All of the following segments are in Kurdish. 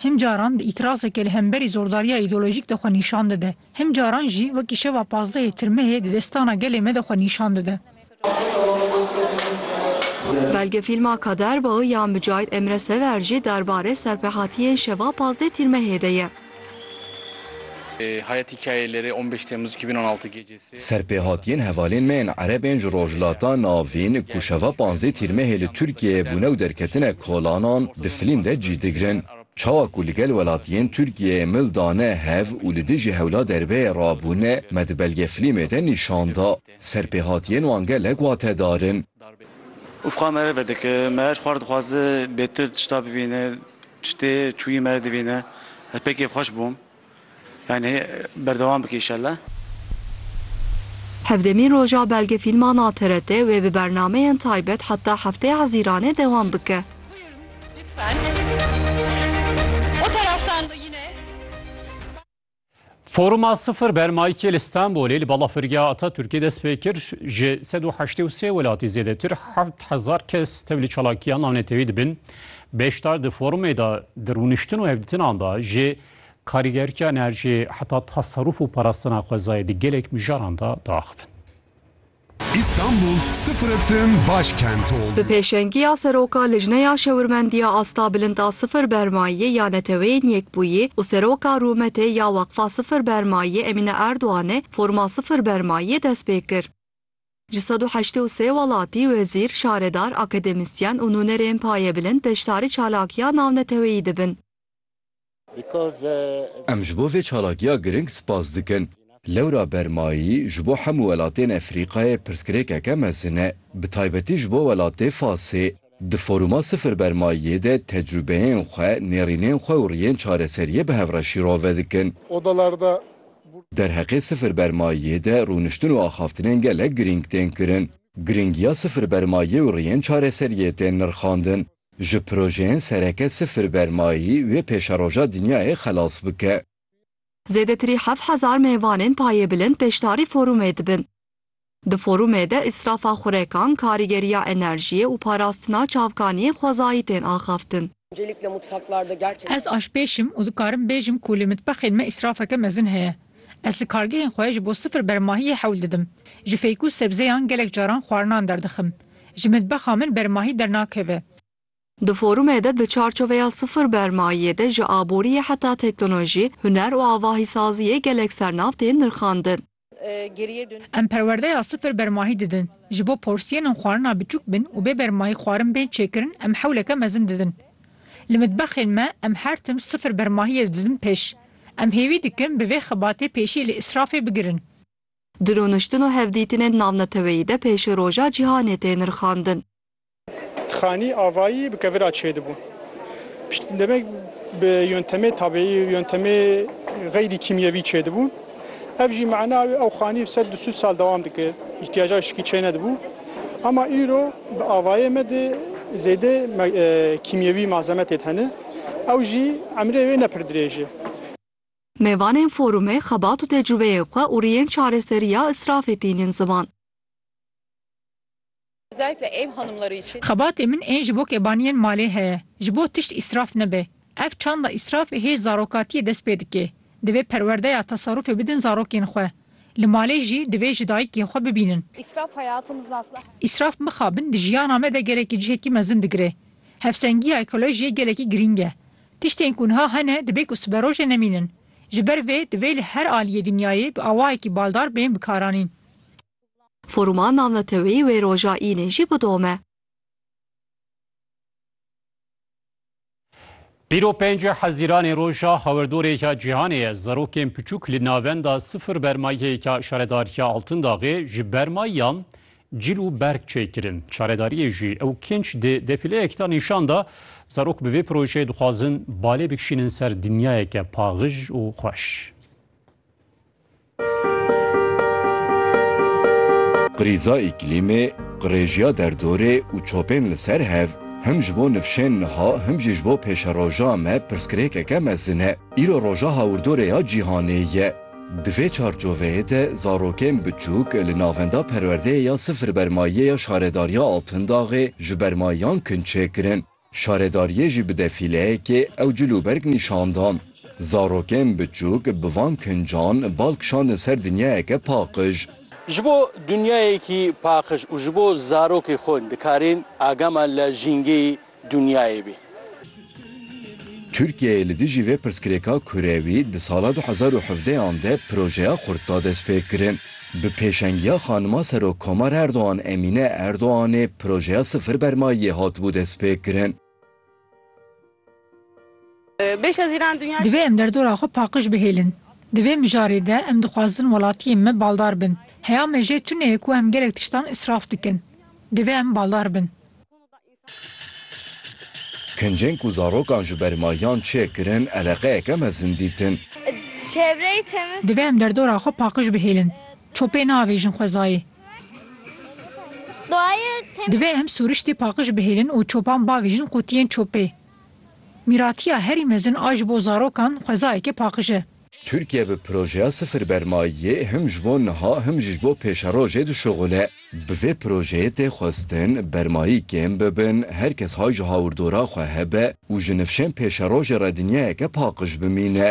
Hin caran bi îtirazekê li hemberî zordariya îdeolojîk de xwe nîşan dide. Hin caran jî wekî şeva pazdehê tirmehê di destana gelê me de xwe nîşan dide. Belgefîlma Kader Bağı ya Mücahit Emre Sever jî derbarê serpehatiyên şeva pazdeh tîrmehê de ye. Serpêhatiyên hevalên me yên Erebên ji Rojhilata Navîn ku şeva panzdeh Tîrmehê li Tirkiyeyê bûne û derketine kolanan di filîm de cî digirin çawa ku li gel welatiyên Tirkiyeyê mil dane hev û li dijî hewla derbeyê rabûne me di belge filîmê de nîşan da. Serpêhatiyên wan gelek watedar in. Ufqa me re vedike. Me ji xwe re dixwaze bêtir tişta bivîne. Tiştê çûyî me re divîne. Ez pêkê xweş bûm. Yanî berdewam bike îşellah. Hevdemîn roja belgefîlma na TRT wê bi bernameyên taybet heta Hefteya Hezîranê dewam bike. Foruma Sifir Bermayîkê li Stenbolê li Balafirgeha Atatürkê dest pê kir, ji sed û heştê û sê welatî zêdetir heft hezar kes tev li çalakiya navnetewî dibin. Beşdar di forumê de di rûniştin û hevdîtinan de ji karîgertiya enerjiyê heta teserûf û parastina xwezayê di gelek mijaran de diaxivin. Îstanbul sifre tim baş kent oldu. Bi pêşengiya Seroka Lijneya Şewirmendiya Asta Bilind a Sifir Bermayî ya Neteweyên Yekbûyî û Seroka Rûmetê ya Weqfa Sifir Bermayî Emîne Erdoganê foruma Sifir Bermayî destpêkir. Ji sed û heştê û sê welatî, wezîr, şaredar, akademisyen û nûnerên payebilind beşdarî çalakiya navneteweyî dibin. Em ji bo vê çalakiya giring spas dikin. Lewra Bermayî ji bo hemû welatên Efrîqayê pirsgirêkeke mezin e, bi taybetî ji bo welatê Fasê. Di Foruma Sifir Bermayiyê de tecrûbeyên xwe, nêrînên xwe û riyên çareseriyê bi hev re şîrove dikin. Derheqê Sifir Bermayiyê de rûniştin û axaftinên gelek girîng tên kirin. Girîngiya Sifir Bermayiyê û riyên çareseriyê tên nirxandin. Ji projeyên sereke Sifir Bermayî wê pêşeroja dinyayê xelas bike. Zêdetirî heft hezar mêvanên payêbilind beşdarî forumê dibin. Di forumê de îsrafa xurekan, karîgeriya enerjiyê û parastina çavkaniyên xwezayî tên axaftin. Ez aşpêş im û dikarim bêjim ku li mitbexên me îsrafeke mezin heye. Ez li kargehên xwe ji bo sifir bermahiyê hewl didim. Ji fêk û sebzeyan gelek caran xwarinan derdixim. Ji mitbexa min bermahî dernakeve. Di forumê de di çarçoveya sifir bermayiyê de ji aboriyê heta teknolojî, huner û avahîsaziyê gelek sernav tên nirxandin. Em perwerdeya sifir bermahî didin. Ji bo porsiyên xwarina biçûk bin û bê bermahî xwarin bên çêkirin em hewleke mezin didin. Li mitbexên me em her tim sifir bermahiyê didin pêş. Em hêvî dikin bi vê xebatê pêşî li îsrafê bigirin. Di rûniştin û hevdîtinên navneteweyî de pêşîroja cîhanê tê nirxandin. Xanî avayî bi kevira çêdibû. Piştî demek bi yontemê tabiî, yontemê xeyrî kîmyewî çêdibû. Ev jî mana wê ew xanî bi sed du sûd sal dewam dikir. Îhtîyaca şikî çênedibû. Ama îro bi avayê me de zêde kîmyewî malzeme têd hene. Ew jî emrê wê ne pir dirêj e. Mêvanên forumê xebat û tecrubeyên xwe û riyên çareseriya îsrafê tînin ziman. Xebatê min ên ji bo kebaniyên malê heye, ji bo tişt îsraf nebe. Ev çanda îsrafê hê zarokatiyê dest pê dike. Divê perwerdeya tasarrufê bidin zarokên xwe. Li malê jî divê ji dayikê xwe bibînin. Îsraf mixabin di jiyana me de gelekî cihekî mezin digire. Hevsengiya ekolojiyê gelekî girîng e. Tiştên ku niha hene dibê ku siberojê nemînin. Ji ber vê divê li her aliyê dinyayê bi awayekî baldar bên bikaranîn. Foruma navneteweyî wê roja Înê jî bidome. Îro penc Hezîranê roja hawerdorê ya cîhanê ye. Zarokên piçûk li navenda sifir bermayê ya Şaredariya Altindaxê ji bermayiyan cil û berg çêkirin. Çaredariyê jî ew kênc di defîleyek de nîşan da. Zarok bi vê projeyê dixwazin balê bikişînin ser dinyayeke paxij û xweş. Krîza îklîmê, qirêjiya derdorê û çopên li ser hev, him ji bo nifşên niha him jî ji bo pêşeroja me pirsgirêkeke mezin e. Îro Roja Hawirdorê ya Cîhanê ye. Di vê çarçoveyê de zarokên biçûk li Navenda Perwerdeyê ya Sifir Bermayîyê ya Şaredariya Altindaxê ji bermayiyan kinçê kirin. Şaredariyê jî bi defîleyekê ew cil û berg nîşan dan. Zarokên biçûk bi van kincan bal kişandin ser dinyayeke paqij. Ji bo dinyayekî paqij û ji bo zarokê xwe dikarên agama li jîngeyê dinyayê bê. Tirkiyeyê li dijî vê pirsgirêka kurewî di sala du hezar û hevdeh yan de projeya xurt da destpêkirin. Bi pêşengiya Xanima Serokkomar Erdogan Emîne Erdoganê projeya Sifir Bermayiyê hatibû destpêkirin. Divê em derdora xwe paqij bihêlin. Di vê mijarê de em dixwazin welatiyên me baldar bin. Heya me jê tune ye ku em gelek tiştan îsraf dikin. Divê em baldar bin. Kincên ku zarokan ji ber mahiyan çê kirin eleqeyeke mezin dîtin. Divê em derdora xwe paqij bihêlin. Çopê naavêjin xwezayê. Divê em sûriştê paqij bihêlin û çopan bavêjin qutiyên çopê. Mîratiya herî mezin a ji bo zarokan xwezayeke paqij e. Tirkiye bi projeya sifir bermayiyê him ji bo niha him jî ji bo pêşerojê dişuxule. Bi vê projeyê tê xwestin bermayî kêm bibin, her kes hay ji hawirdora xwe hebe û ji nifşên pêşerojê re dinyayeke paqij bimîne.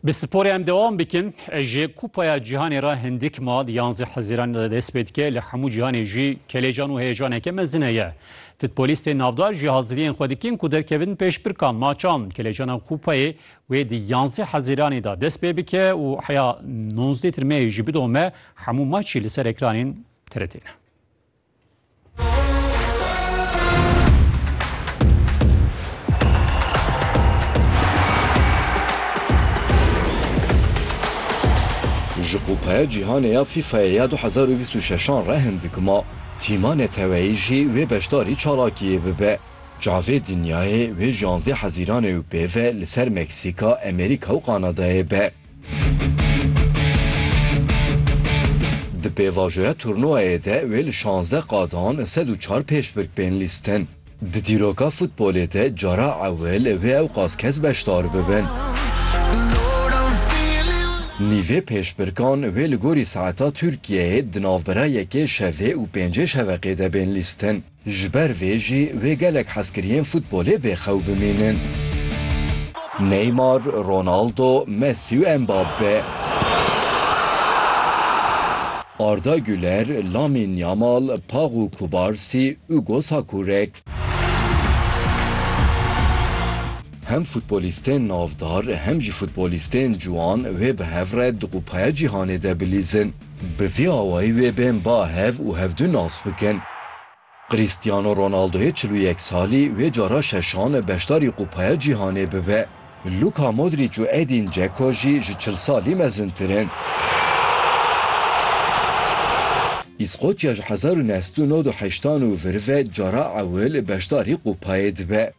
Bi sporê em dewam bikin. Ji Kupaya Cîhanê re hindik ma di yanzdeh Hezîran de dest pê dike. Li hemû cîhanê jî kelecan û heyecaneke mezin heye. Futbolîstên navdar jî haziriyên xwe dikin ku derkevin pêşbirka maçan. Kelecana Kupayê wê di yanzdeh Hezîranê de dest pê bike û heya nozdetir Meyê jî bidome. Hemû maçî li ser ekranên TRT'ê ne. Ji Kupaya Cîhanê ya FIFA'yê ya du hezar û bîst û şeşan re hin dikima tîma neteweyî jî wê beşdarî çalakiyê bibe. Çavê dinyayê wê ji yanzdeh hezîranê û pê ve li ser Meksîka, Amerîka û Kanadayê be. Di pêvajoya turnûwayê de wê li şazdeh qadan sed û çar pêşbirk bên lîstin. Di dîroka futbolê de cara ewil wê ewqas kes beşdar bibin. Nîvê pêşbirkan wê li gorî saeta Tirkiyeyê di navbera yekê şevê û pêncê şeveqê de bên lîstin. Ji ber vê jî wê gelek hezkiriyên futbolê bê xew bimînin. Neymar, Ronaldo, Messi û Mbappe. Arda Güler, Lamîn Yamal, Pagu Kubarsî, Hugo Sakurek. Hem futbolîstên navdar hem jî futbolîstên ciwan wê bi hev re di Kupaya Cîhanê de bilîzin. Bi vî awayî wê bên ba hev û hevdu nas bikin. Cristiano Ronaldoyê çil û yek salî wê cara şeşan beşdarî Kupaya Cîhanê bibe. Luka Modrîc û Edîn Dzeko jî ji çil salî mezintir in. Îskoçya ji hezar û neh sed û nod û heştan û vir ve cara ewil beşdarî Kupayê dibe.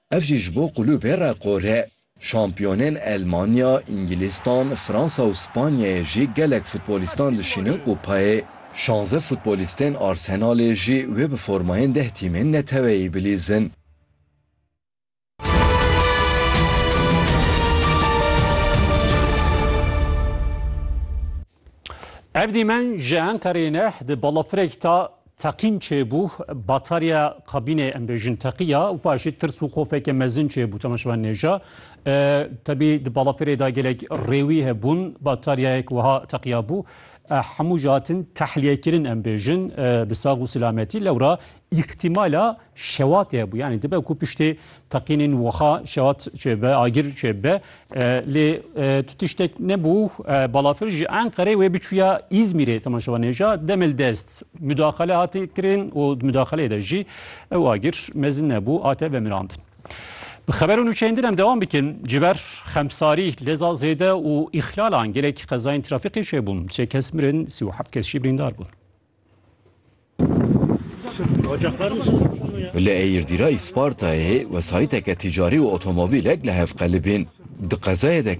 Ev jî ji bo kulûbê reqor e. Şampiyonên Elmanya, Îngilîstan, Fransa û Spanyayê jî gelek futbolîstan dişînin kupayê. Şanze futbolîstên Arsenalê jî wê bi formayên deh tîmên neteweyî bilîzin. Ev dîmen ji Enqereyê ne di balafirek ta teqîn çêbû batarya kabînê em bêjin teqiya û paşî tirs û xofeke mezin çêbû temaşevan nêja tebî di balafirê da gelek rêwî hebûn bataryayek wiha teqiya bû hemû ji hatin tehliyekirîn em bêjin bi sax û silametî lewra Îhtimala şewatê hebû yanî dibe ku piştê teqînên wiha şewat çêbe agir çêbe lê tu tiştek nebû balafir ji Enqerê wê biçûya Îzmîrê temaşewa nêja demel dest mudaxele hatê kirin û mudaxeleyê de jî ew agir mezin nebû hate vemirandin. Bi xeber û nûçeyên din em dewam bikin ji ber xemsarî leza zêde û îxlalan gelek qezayên trafîqê çêbûn sê kes mirin sî û heft kes jî birîndar bûn. Li Eyirdîrayî Spartayê wesayîteke tîcarî û otomobîlek li hev qelibîn. Di qezayê de